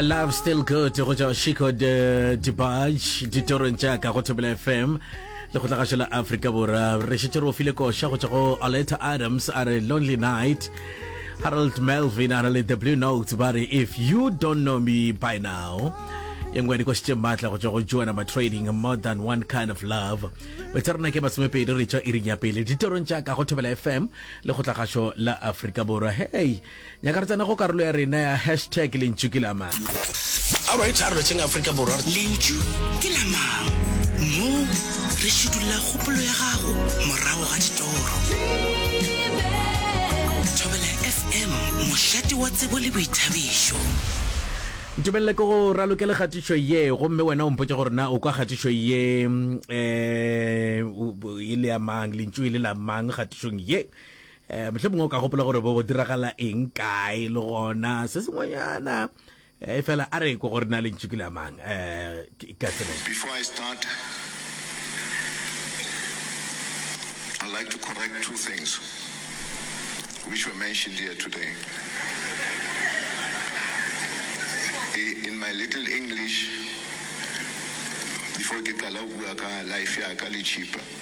love still good go tšwa chico de dibaj ditorong tša ka go thobela fm le go tlagašo la afrika borwa re šetse re o file koša go tšwa go oleta adams a re lonely night harold melvin a re le the blue notes ba re if you don't know me by now e nngwe dikoši tše maatla go tšwa go joana ma trading more than one kind of love betsa rena ke masomepedi re tšwa iring ya pele ditorong tša ka go thobela fm le go tlagašo la afrika borwa hey nyaka re tsena go karolo ya rena ya hashtag lentšu ke la mang a right a re letseng aforika borwa lentšu ke la mang mo re šudulla kgopolo ya gago morago ga ditoro thobela fm mošate wa tsebo le boithabišo ntumelele ke go raloke le kgatišo ye gomme wena o mpotse gore na o kwa kgatišo ye um e le ya mang lentšu e le la mang kgatišong ye E, mohlomongwe o ka gopola gore bo diragala eng kae le gona se sengwenyana e eh, fela a re ko gore na le ntšhi ke le amang um eh, ka tsebe Before I start, I'd like to correct two things which were mentioned here today. In my little English, before ke qala bua ka life ya ka le chipa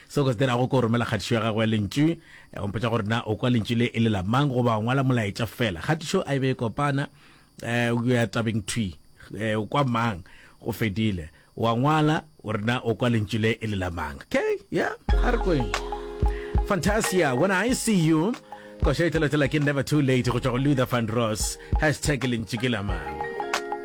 Seo ke se dirago ke go romela kgatišo ya gago ya lentšu. Go mpotša gore na o kwa lentšu le e le la mang goba o ngwala molaetša fela. Kgatišo a e be e kopana, um o ya tabeng thwi, um o kwa mang, go fedile. O a ngwala o re na o kwa lentšu le e le la mang. K, yeah, ga re kweng. Fantasia, When I See You, koša e tšweletšela ke Never Too Late go tšwa go Luther Vandross, hashtag lentšu ke la mang.